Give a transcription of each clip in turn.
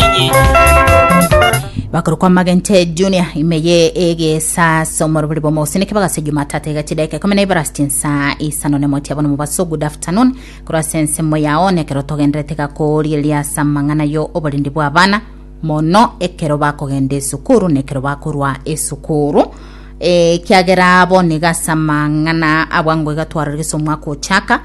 inye. bakoro kwa magente junior imeye egesaso morobori bomogosineke bagase jumatata iga chidaika ikumi na ibere ase chinsa isano na emotia bono mobaso good afternoon korwa ase ensemo yao nekero togenderete iga korigereria ase amang'ana yo oborindi bwa abana mono ekero bakogenda esukuru na ekero bakorwa esukuru Eh, kiagera bono iga ase amang'ana abwango iga twarorigese omwaka ochaka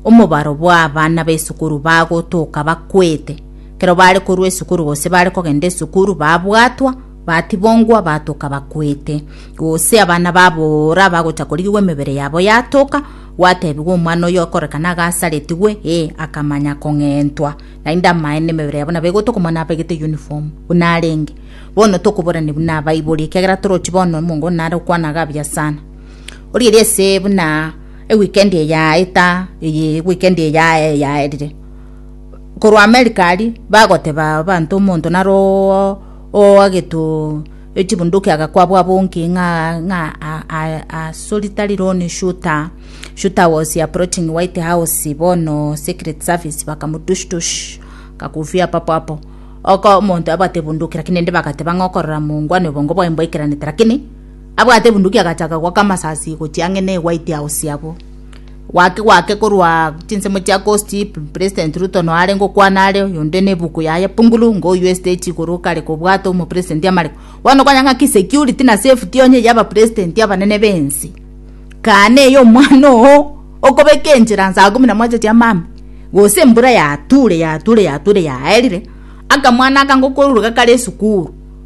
omobaro bwa abana b'esukuru bagotoka bakwete Ekero baare korwa esukuru gose baare kogenda esukuru babwatwa, batibongwa, batoka bakwete. Gose abana babora bagocha korigigwa emebere yabo yatoka, gwatebigwa omwana oyo okorekana iga asaretigwe, ee, akamanya kong'entwa. Naende amaene emebere yabo nabo egotoka omwana abegete uniform buna arenge. Bono tokoborania buna abaibori ekiagera torochi bono omonto onde nare okwana iga buya sana. Origeria ase buna eweekend eye yaeta, eye eweekend eye yae- yaerire, korwa America aria bagoteba abanto omonto nare oo oagetoo echibunduki agakwabwa bonki ng'a ng'a a- a- a solitary lone shooter shooter was approaching white house bono secret service bakamotush tush kakufia papo hapo oko omonto abwate ebunduki lakini ende bagateba ng'a okorora mongwa na obongo bwaye mboikaranete lakini abwate ebunduki agacha akagwa kamasasi gochia ang'e ne white house abwo Gwaki gwake korwa chinsemo chia Kosti-Ip, President Ruto noare ngokwana are, oyonde nebuku yaye Pungulu, ngoywe stage igoro kare kobwate omopresident amare Bono konya ng'aki security na safety onye eye abapresident abanene b'ense. Kaana eye omwana oo okobeka enchera saa kumi na moja chia mambia, gose embura yature yature yature yaerire, akamwana aka ngokoruruka kare esukuru,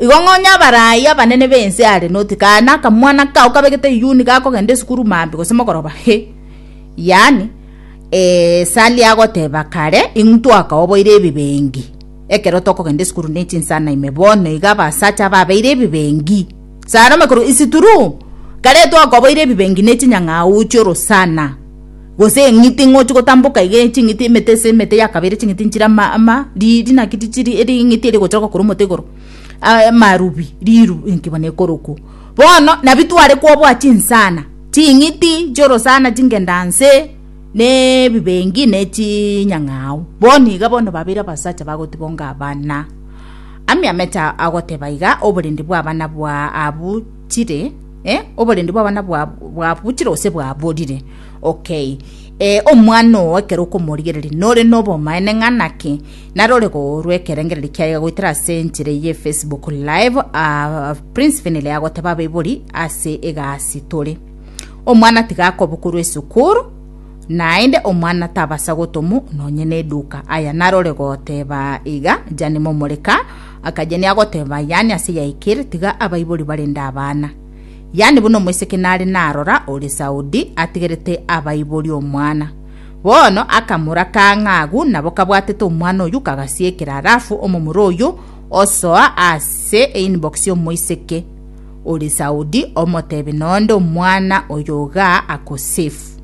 Igo ng'a onye abarai abanene b'ense are noti kae nakamwana kao kabegete iyuni gakogenda esukuru maambia gose mogoroba, he, yaani, ee, Sally agoteba kare, intwakaoboire ebibengi ekero tokogenda esukuru ne chinsana ime, bono iga abasacha ababeire ebibengi. Salome korwa, It's true, kare twakoboire ebibengi ne chinyang'au chi'orosana. Gose eng'iti ng'ochi gotamboka iga eye ching'iti emete ase emete ya kabere ching'iti nchire ama ama riiri naki tichiri eri eng'iti ere egochoroka korwa omote igoro aye amarubi riru inki bono ekorokwa. Bono nabi tware koboa chinsana ching'iti chiorosana chingendanse na ebibengi na echiinyang'ao bono iga bono babere abasacha bagotibonga abana. Ami amecha agoteba iga oborende bwa abana bwaa abuchire eh oborende bwa abana bwaa bwabuchire gose bwaborire. Okay, ee, omwana oo ekero okomorigereria nore nobomaene ng'a naki narore koorwa ekerengererio kiaye goetera ase enchera eye Facebook live aa Prince Finlay agoteba abaibori ase egasi tore omwana tiga akobokorwa esukuru naende omwana tabasa gotomu nonye neduka aya narore goteba iga jani momoreka akajani agoteba yani ase yaikere tiga abaibori barende abana Yaani buna omoiseke nare narora ore Saudi atigerete abaibori omwana. Bono akamoraka ng'a agwo nabo kabwatete omwana oyio kagasiekera alafu omomura oyio osoa ase einbox y'omoiseke ore Saudi omotebe nonde omwana oyo iga ako safe.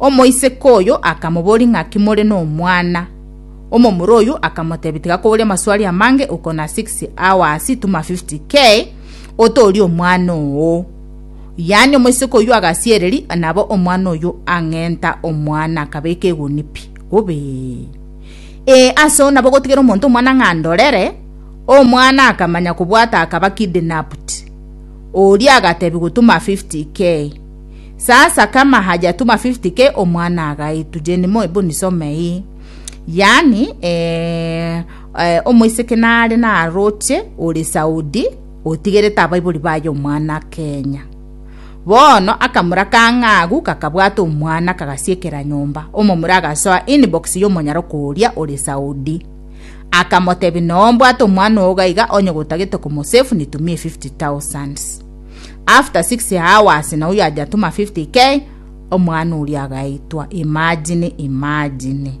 Omoiseke oyo akamobori ng'a kimore nomwana. Omomura oyio akamotebia tiga koboria amaswali amange ukona 6 hours tuma 50k otooria omwana oo. Yaani omoiseke oyio agasiereri, nabo omwana oyio ang'enta omwana akabeka eguni pi, bobe. Ee, ase oo nabo gotigera omonto omwana ng'a ndorere, omwana akamanya kobwata akaba kidnapped. Oria agatebiwa gotuma 50k. Sasa kama hajatuma 50k omwana agaitwa. Jenny Moi, bonisomei. Yaani, ee, Omoiseke nare naroche ore Saudi otigerete abaibori baye omwana Kenya. Bono akamura ka ng'agu kakabwata omwana kagasiekera nyomba. Omomura agasoa inbox y'omonyara okoria ore Saudi. Akamotebi no mbwate omwana oo gaiga onye gotagete komosefu nitumie 50,000. After 6 hours na uyo ajatuma 50k omwana oria agaitwa. Imagine, imagine.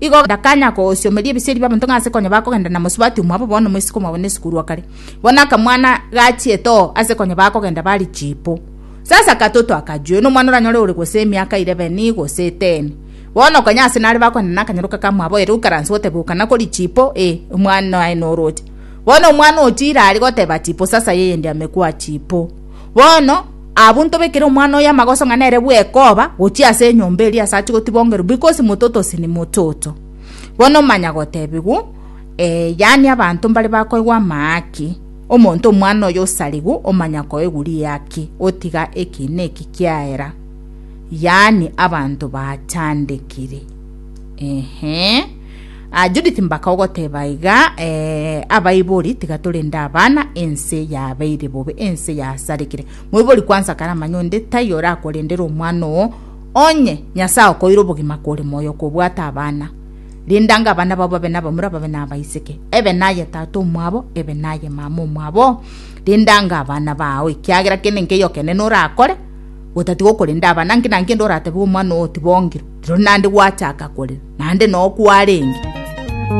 Igo ndakanya kogosiomeria ebiseri bi'abanto ng'a ase konya bakogenda na mosubati omwabo bono moiseke omwabo nesikuru o kare. Bono akamwana gachiete oo ase konya bakogenda bari chipo. Sasa katoto akajue, nomwana oranyore ore gose emiaka irebeni gose eteni. Bono konya ase nare bakogenda nakanyaroka ka mwabo ere okaranse goteba okana kori chipo ee omwana oye noroche. Bono omwana ochiire aria goteba chipo sasa yeye ndiamekwa chipo. Bono, abwo ntobekere omwana oyo amagoso ng'a nere bw'ekoba gochia ase enyomba eria ase achia gotibongerwa because mototosi ni mototo. Bono omanya gotebigwa, Ee, yaani abanto mbare bakoigwa amaaki. Omonto omwana oyo osarigwe omanya koigwa riaki otiga eki neki kiaera. Yaani abanto baachandekire. Eeh. Ah, Judith mbaka ogoteba iga eh, abaibori tiga torende abana ense yabeire bobe ense yasarekire moibori kwansa kare amanye onde tai orakorendere omwana oo onye nyasaye okoire obogima kore moyo kobwata abana rindanga abana babo babe nabamura babe nabaiseke ebe naye tata omwabo ebe naye mama omwabo rindanga abana bao ekiagera kende nkeiyo kenene orakore gotatigwa okorenda abana nki na nki ende oratebe omwana oo tibongire, rirorio naende gwachaka korera, naende noo kwarenge.